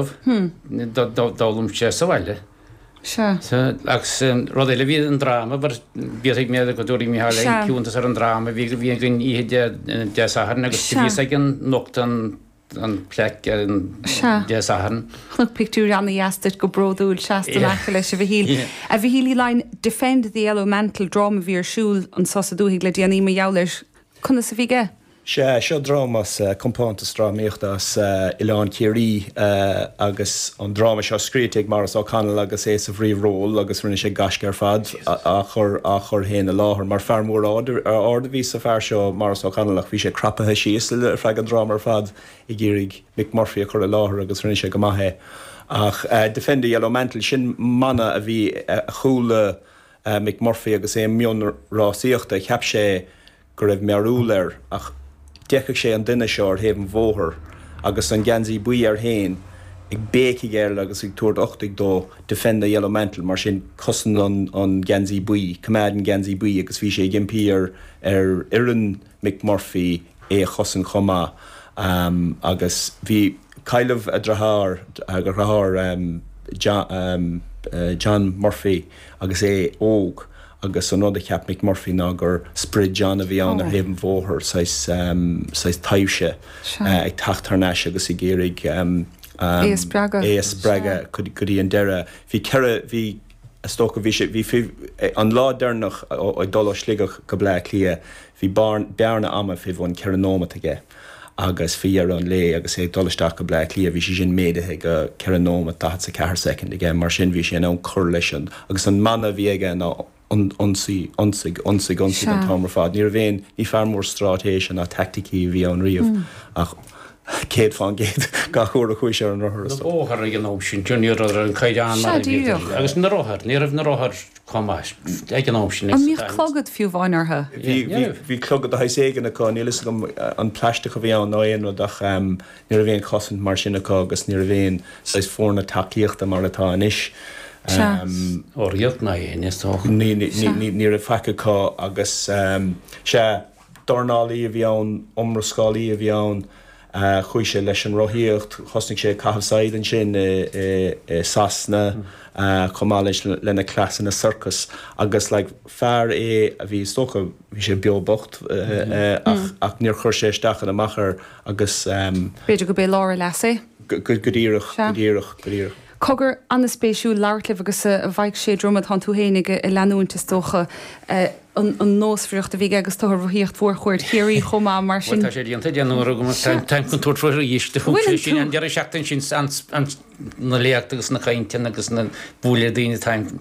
d'fhoghlaim sé sa bhaile. Agus rud eile, bhí an dráma, bhíos mé go dtabharfaidh Micheál Ó hIceadha ar an dráma a bhí againn oíche Dé Sathairn agus bhíos ag an nochtadh an plaic ar an Dé Sathairn. Chonac pictiúr ana-dheas duit go bródúil, seasta in aice leis, a Mhichíl. A Mhichíl Uí Laighin, 'Defend the Yellow Mantle', dráma a bhí ar siúl anseo sa dúthaigh le déanaí mar gheall air, conas a bhí aige? Sea, seo dráma as compántas drámaíochta as Oileán Ciarraí agus an dráma seo scríte ag Maurice O'Connell agus é sa bhríomhról agus rinne sé gaisce ar fad á chur, á chur féin i láthair mar fear mór ard, ard a bhí sa bhfear seo Maurice O'Connell ach bhí sé crapaithe síos le, ar feadh an dráma ar fad ag iarraidh Mick Murphy a chur i láthair agus rinne sé go maith é ach Defend the Yellow Mantle, sin mana a bhí, a chuala Mick Murphy agus é i mbun rásaíochta, cheap sé. go raibh mearbhall air ach d'fheiceadh sé an duine seo ar thaobh an bhóthair agus an geansaí buí air féin ag béicigh air agus ag tabhairt uchtaigh dó, 'Defend the Yellow Mantle', mar sin, 'Cosain an Geansaí Buí', 'Coimeád an Geansaí Buí', agus bhí sé ag impí ar fhoireann Mick Murphy é a chosaint chomh maith agus bhí cailleadh a dhriotháir, a dhriotháir John Murphy agus é óg. agus an rud a cheap Mick Murphy ná gur sprid John a bhí ann ar thaobh an bhóthair, saghas taibhse ag teacht thar n-ais agus ag iarraidh é a spreagadh go dtí an deireadh. Bhí ceithre, bhí, is dócha, bhí sé, bhí, an lá deireanach ag dul ó Shligeach go Bleá Cliath, Bhí bearna ama fé bhun ceithre nóimeat aige agus fé dheireadh an lae agus é ag dul isteach go Bleá Cliath bhí sé sin méadaithe go ceithre nóimeat daichead 's a ceathair soicind aige, mar sin bhí sé in ann cur leis sin agus an mana a bhí aige ná Ionsaigh, ionsaigh, ionsaigh, ionsaigh an t-am ar fad. Ní raibh aon, ní fear mór stráitéise ná taicticí a bhí ann riamh ach céad fán gcéad gach uair a chuaigh sé ar an rothar, is dócha. na bóithre ag an am sin, ní raibh an caighdeán mar a bhí inniu agus na rothair, ní raibh na rothair. chomh maith. Ag an am sin. An mbíodh clogad fiú amháin orthu? Bhí. Bhí clogad de shaghas éigin acu, níl a fhios agam an plaisteach a bhí ann nó aon rud ach ní raibh aon chosaint mar sin acu agus ní raibh aon saghas foirne tacaíochta mar atá anois. Ó ní raibh ná éinne is dócha. Ní raibh faic acu agus, sea, dornálaí a bhí ann, iomrascálaí a bhí ann. Chuaigh sé leis an rothaíocht, thosnaigh sé ag caitheamh saighead ansin i Sasana chomh maith leis lena cleasanna sorcais agus like fear é a bhí is dócha, bhí sé beo bocht ach ach níor chuir sé isteach ná amach air agus. B'fhéidir gurb é lár a leasa é. Go díreach, go díreach, go díreach. Cogar an-spéisiúil labhairt libh agus bheadh sé droma tánn tú féin ag leanúint is dócha an nósmhaireacht a bhí aige agus tú ar rothaíocht Mhórchuaird Chiarraí chomh maith mar sin. Bhuel tá sé déanta deich n-uaire agam agus táim chun tabhairt faoi arís. Do thug sé sin an deireadh seachtaine sin an na léachtaí agus na cainteanna agus ag bualadh le daoine táim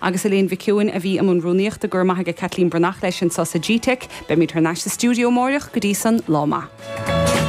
agus Elaine Mhic Eoin a bhí i mbun rúnaíochta. Go raibh maith ag Caitlín Breathnach leis anso sa GTeic. Beimid thar n-ais sa stiúideo amáireach. Go dtí san, lá maith.